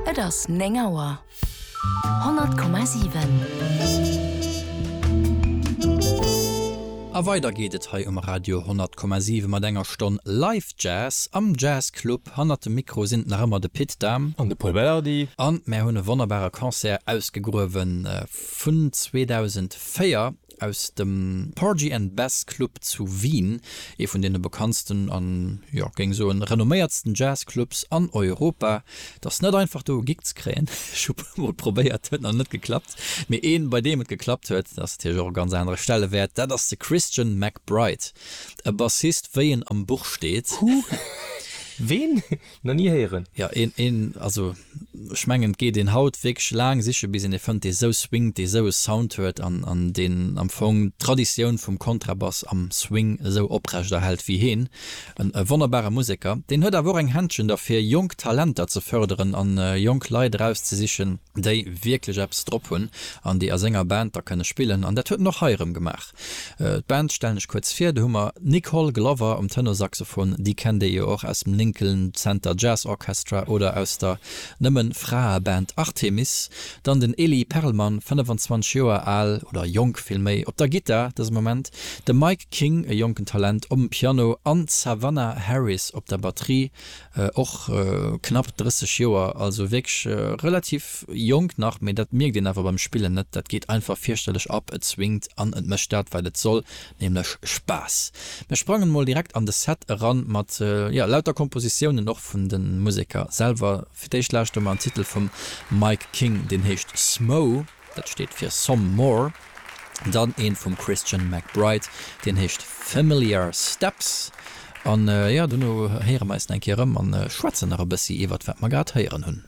Et ass néng Auer. 100,7. A weider geet et hei um Radio 10,7 mat enger Stonn Live Jazz am Jazz Club. Hannert dem Mikro sinn et nach ëmmer de Pit Dahm an de Pol Belardi. An mär hunn e wonnerbare Concert ausgegruewen vun 2004 aus dem Porgy and Bess Club zu Wien, ee vun deene bekanntsten an, jo, géing soen, renomméiertsten Jazzclubs an Europa. Et ass net einfach do e Gig ze kréien, ech hu puer mol probéiert, huet nach net geklappt, mee een bei deem et geklappt huet, dat ass natierlech och e ganz anere Stellewäert, dat ass de Christian McBride, e Bassist wéi en am Buch steet. Who? Ween? Nach ni héieren. Jo een een also ech mengen et geet een haut wierklech laang siche bis een ee fënnt dee sou swingt, dee sou e Sound huet an an deen am Fong d'Traditioun vum Kontrabass am Swing esou oprecht erhält wéi heen. En e wonnerbare Museker, deen huet awer och eng Händchen derfir jonk Talenter ze fërderen an jonk Leit erauszesichen déi wierklech eppes drop hunn an déi a senger Band da kënne spillen an dat huet en och hei erëm gemaach. D'Band stellen ech kuerz vir, do hu mer d'Nicole Glover um Tenorsaxophon, déi kennt Dir jo och aus dem Lincoln Center Jazz Orchestra oder aus der Nëmme-Frae-Band Artemis. Dann den Elie Perlmann, 25 Joer al, oder jonk villméi, op der Gittar dëse Moment, de Mike King, e jonken Talent, om Piano an d'Savannah Harris op der Batterie. Och knapp 30 Joer, also wierklech relativ jonk nach, mee dat mierkt een awer beim Spillen net. Dat geet einfach fierchterlech ab, et swingt an et mécht dat, wat et soll, nämlech Spaass. Mir sprangen mol direkt an de Set eran mat, jo, lauter Kompositiounen och vun de Museker selwer. Fir d'éischt lauschte mer en Titel vum Mike King, deen heescht Smough. Dat steet fir Some More. Dann een vum Christian McBride, deen heescht Familiar Steps. An jo, dono héiere mer eis nach eng Kéier erëm an schwätzen nach e bëssi iwwert wat mer grad héieren hunn.